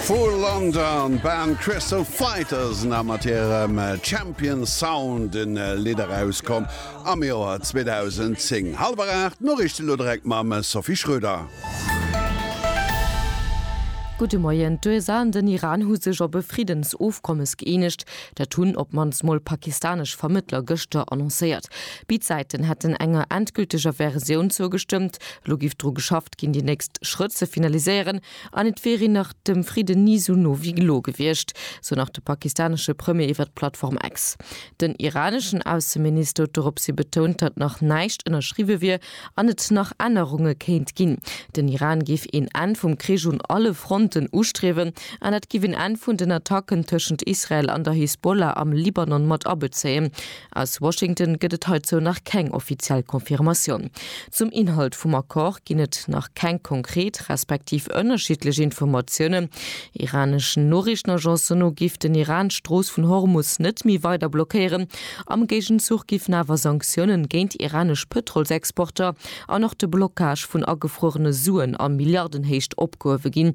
Vu London, Band Crystal Fighters na mat hirem Champion Sound e Lidd erauskomm am Joer 2010. Hallwer 8, d'Noriichten elo direkt mam Sophie Schröder. Gudde Moien, D'USA an den Iran hu sech op e Friddensofkommes gëeenegt. Dat hunn op d'mannst mol pakistanesch Vermëttler gëschter annoncéiert. Béid Säiten hätten enger endgülteger Versioun zougestëmmt. Elo giff dru geschafft. ginn déi nächst Schrëtt ze finaliséieren an et wier een nach dem Fridden ni sou no wéi elo gewiescht, sou nach de pakistanesche Premier iwwert d'Plattform X. Den iraneschen Ausseminister huet dorops hi betount, datt nach näischt ënnerschriwwe wier an et nach Ännerunge kéint ginn. Den Iran géif een Enn vum Krich un alle Fronten ustriewen an dat géif een Enn vun den Attacken tëschent Israel an der Hisbollah am Libanon mat abezéien, Aus Washington gëtt et heizou nach keng offiziell Confirmatioun. Zum Inhalt vum Accord ginn et nach keng konkret respektiv ënnerschiddlech Informatiounen. Iraneschen Noriichtenagencen no giff den Iran d'Strooss vun Hormus net méi weider blockéieren. Am Géigenzuch giffen awer Sanktiounen géint iranesch Pëtrolsexporter an och de Blockage vun agefruerene Suen a Milliardenhéicht opgehuewe ginn.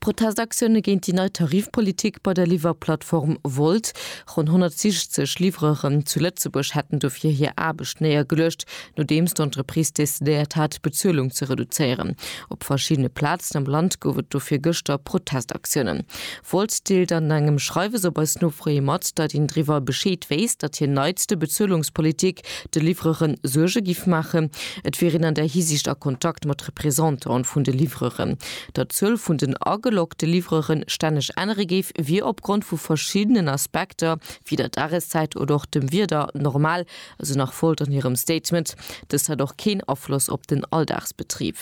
Protestaktioune géint déi nei Tarifpolitik bei der Liwwerplattform Wolt. Ronn 160 Livreuren zu Lëtzebuerg hätten dofir hir Aarbecht néiergeluecht, nodeems d'Entreprise decidéiert hat, d'Bezuelung ze reduzéieren. Op verschiddene Plazen am Land gouf et dofir gëschter Protestaktiounen. Wolz deelt an engem Schreiwes op eis Nofroe mat, datt een driwwer Bescheed wéisst, datt hir neitste Bezuelungspolitik de Livreuren Suerge giff maachen. Et wier een an där Hisiicht a Kontakt mat Représentantë vun de Livreuren. Datt d'Zuel vun den ageloggte Livreure stänneg ännere géif, wier opgrond vu verschiddenen Aspekter, wéi der Dageszäit oder och dem Wieder, normal, Esou nach Volt an hirem Statement. Dëst hätt och keen Afloss op den Alldagsbetrib.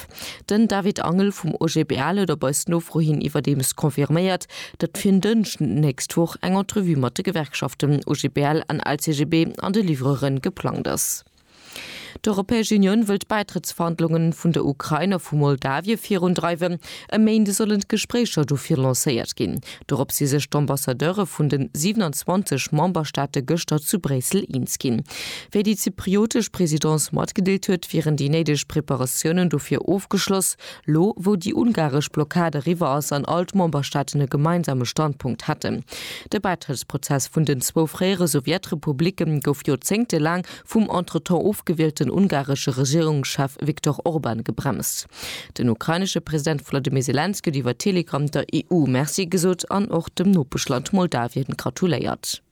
Den David Angel vum OGBL huet op eis Nofro hin iwwerdeems confirméiert, datt fir en Dënschden d'nächst Woch eng Entrevue mat de Gewerkschaften OGBL an LCGB an de Livreuren e geplangt ass. D'Europäesch Unioun wëll d'Bäitrëttsverhandlunge vun der Ukrain a vu Moldawie virundreiwen. E Méinde sollen d'Gespréicher dofir lancéiert ginn. Dorop si sech d'Ambassadeure vun de 27 Memberstaate gëschter zu Bréissel eens ginn. Wéi déi zypriotesch Presidence matgedeelt huet, wieren déi néideg Preparatiounen dofir ofgeschloss, lo wou déi ungaresch Blockad eriwwer ass an all d'Memberstaaten e gemeinsame Standpunkt hätten. De Bäitrëttsprozess vun den zwou fréiere Sowjetrepublicke gouf joerzéngtelaang vum entretemps ofgewielten ungaresche Regierungschef Viktor Orban gebremst. Den ukrainesche President Volodymyr Selenskyj huet iwwer Telegram der EU Merci gesot an och dem Nopeschland Moldawien gratuléiert.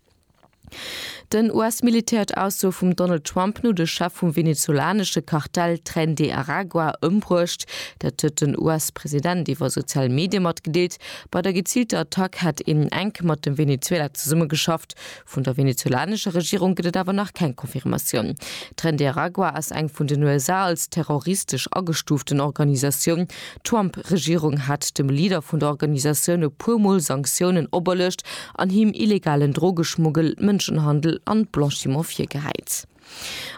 Den US-Militär huet Aussoe vum Donald Trump no de Chef vum venezolanesche Kartell Tren de Aragua ëmbruecht. Dat huet den US-President iwwer sozial Medie matgedeelt. Bei der geziilter Attack hätt een enk mat dem Venezuela zesummegeschafft, Vun der venezuelanescher Regierung gëtt et awer nach keng Confirmatioun. Tren de Aragua ass eng vun den USA als terroristesch agestuuften Organisatioun. D'Trump-Regierung hat dem Leader vun der Organisatioun e puer Mol Sanktiounen operluecht an him illegalen Drogeschmuggel, Mënschenhandel an Blanchiment virgehäit.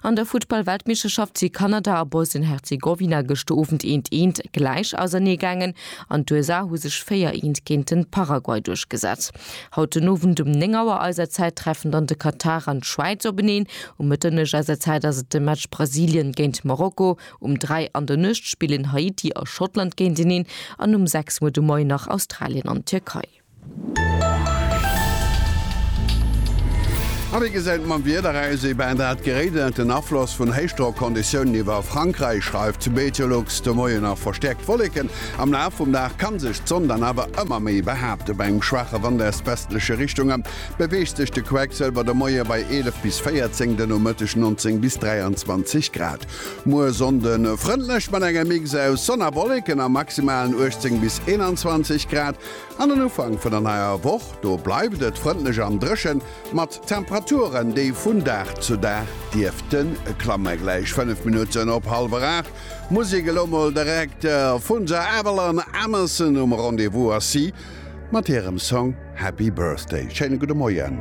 An der Futtball-Weltmeeschterschaft si Kanada a Bosnien-Herzegowina gëschter Owend eent eent gläich ausernee gaangen an d'USA hu sech 4 eent géint den Paraguay duerchgesat. Haut den Owend um 9 Auer eiser Zäit treffen dann de Katar an d'Schwäiz openeen. Um Mëtternuecht eiser Zäit ass et de Match Brasilien géint Marokko. Um 3 an der Nuecht spillen Haiti a Schottland géinteneen an um 6 Auer de Moien nach Australien an d'Tierkei. A wéi gesäit et mam Wieder aus? Et ben dat geréit ënnert den Afloss vun Héichdrockonditiounen iwwer Frankräich, schreift Meteolux de Moien. A verstäerkt Wolleken am Laf vum Dag kann sech d'Sonn dann awer ëmmer méi behaapten. Bei engem schwaache Wand aus westleche Richtunge beweegt sech de Quecksëlwer de Moie bei 11 bis 14, de Nomëtteg 19 bis 23 Grad. Muer Sonnde frëndlech mat engem Mix aus Sonn a Wolleken a maximalen 18 bis 21 Grad. An den Ufank vun der neier Woch, do bleift et frëndlech an dréchen, mat Temperaturen, déi vun Dag zu Dag dierften klammen. Gläich 5 Minutten op hallwer 8, muss ik elo mol direkt vun The Adele an Emerson um Rendez-vous ass si mat hirem Song Happy Birthday. Schéine gudde Moien.